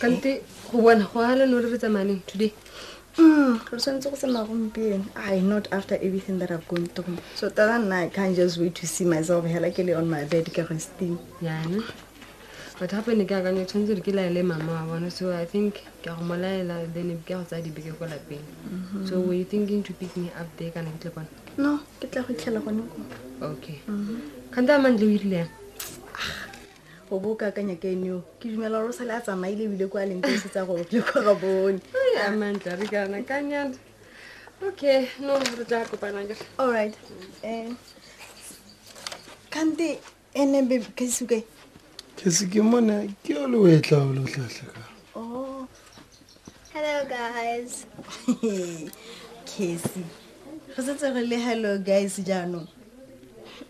kante go bona go ala no re re tsamaneng today Mm, re tshwanetse go tsamaya gompieno i not after everything that i've gone through so tata nna i can't just wait to see myself hela ke le on my bed ke resting yana but gape ne ke akanya o tshwanetse gore ke laele mama wa bona so i think ke a go mo laela then ke a go tsaya dibeke ko lapeng Mhm. so were you thinking to pick me up there kana ke tle kwana no ke tla go itlhela gone ko okay kgante a mantle o irile yang o bo o ka akanya ka ene o ke dumela gore o sale a tsamaile ebile ko a leng tse tsa gore le kwa ga bone a mantla re kana ka nyana okay no re tla kopana ka all right um kante ene be kasuke ke se ke mona ke o le o etla o le o tlhatlha ka oh hello guys kesi re setse re le hello guys jaanong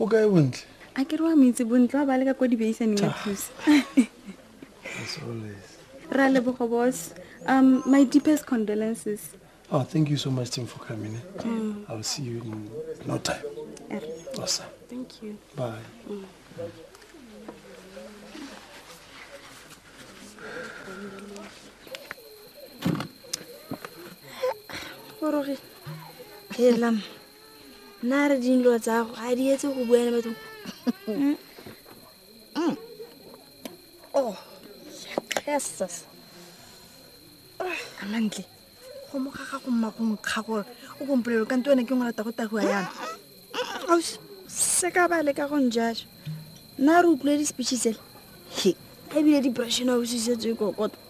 o kae bontle a ke re wa moitse bontle wa ba le ka kwa dibeisaneng ya thusa ra lebogo bos um my deepest condolences oh thank you so much tim for coming eh? mm. i'll see you in no time er. awesome thank you bye mm. Orogi. Helam. nna re dinlo tsago a di etse go bua le batho mm. mm. oh jesus a mantle go mo gaga go mma go nkga gore o kompolelo kante wena ke ngwalata go tagoa yana ausi se ka ba leka go njaso nna re utlwile di-speeches ele ebile di-brashena ausi setse e kokota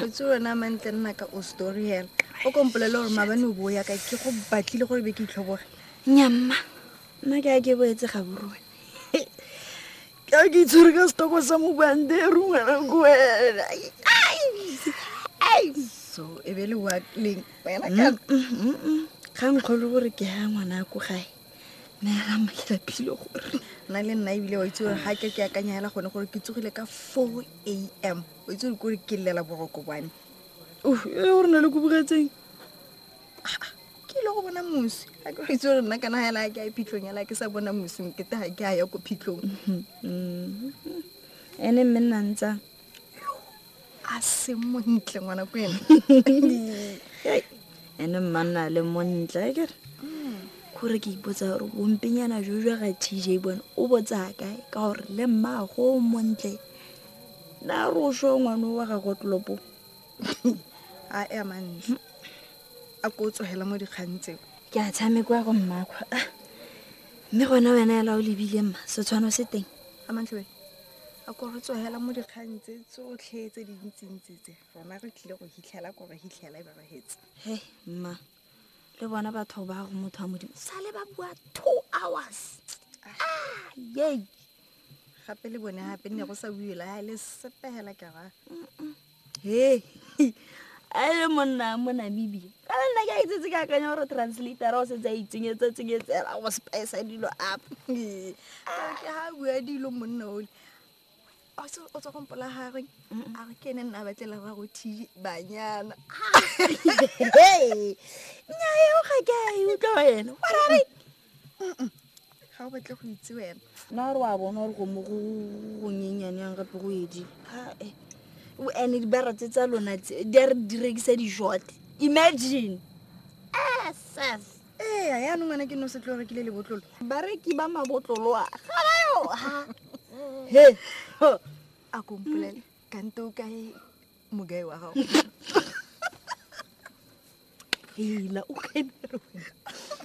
o tse wena mantle nna ka o story hela o kompolele gore mabane o bo ya ka ke go batlile gore be ke itlhoboge nyamma nna ke a ke boetse ga borone ka ke itshwere ka setoko sa mobande rungwana ko wena so e be le wa leng wena ka ga nkgolo gore ke ya ngwana ko gae nna le nna ebile wa itse gore ga ke ke akanya hela gone gore ke tsogile ka four a m o itse gore kore ke llela boroko bwane e gore na le ko bogetseng ke ile go bona mosi a ke itse gore nna kana hela ke a phitlhong hela ke sa bona mosing ke ta ke a ya ko phitlhong ene mme nna ntsa a se montle ngwana ko ena ene mmanna le montle a kere gore ke ipotsa gore bompenyana jo jwa ga tj bone o botsa kae ka gore le mmago o montle na re o sho ngwane wa gago tlopo a e amantle a ko o tsogela mo dikgang tseo ke a tshameko ya go mmakgwa mme gona wena ela o lebile mma setshwano se teng amantle wena a ko re tsogela mo dikgang tse tsotlhe tse di ntsintsi tse rona re tlile go hitlhela ko re hitlhela e berehetse he mma le bona batho ba go motho wa modimo sale ba bua two hours ah, yei gape le bone gape nne go sa buela ga e le sepegela kera he a e le monna mo namibia ka nna ke a itsetse ke akanya gore translator o setse a itsenyetsa tsenyetsela go spice dilo up ke ga bua dilo monna ole o tswa gompola gagwe a re ke ene nna batlela ba go thi banyana nyaeo ga ke a e utlwa ene wa ga o batle go itse wena nna gore wa bona gore go mo go gonyenyane yang gape go edi ae o ene dibara tse tsa lona tse di a re di rekisa dijote imagine asas ee a yanong wena ke no se tlo rekile lebotlolo bareki ba mabotlolo a ga bayo he a kompolele kante o kae mogae wa gago hela o kainero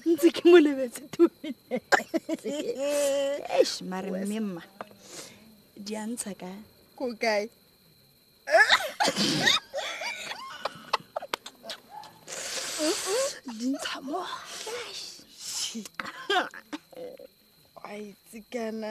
ntse ke mo lebetse tumesh mare mme mma di a ntsha ka ko kae di ntsha mo a itse kana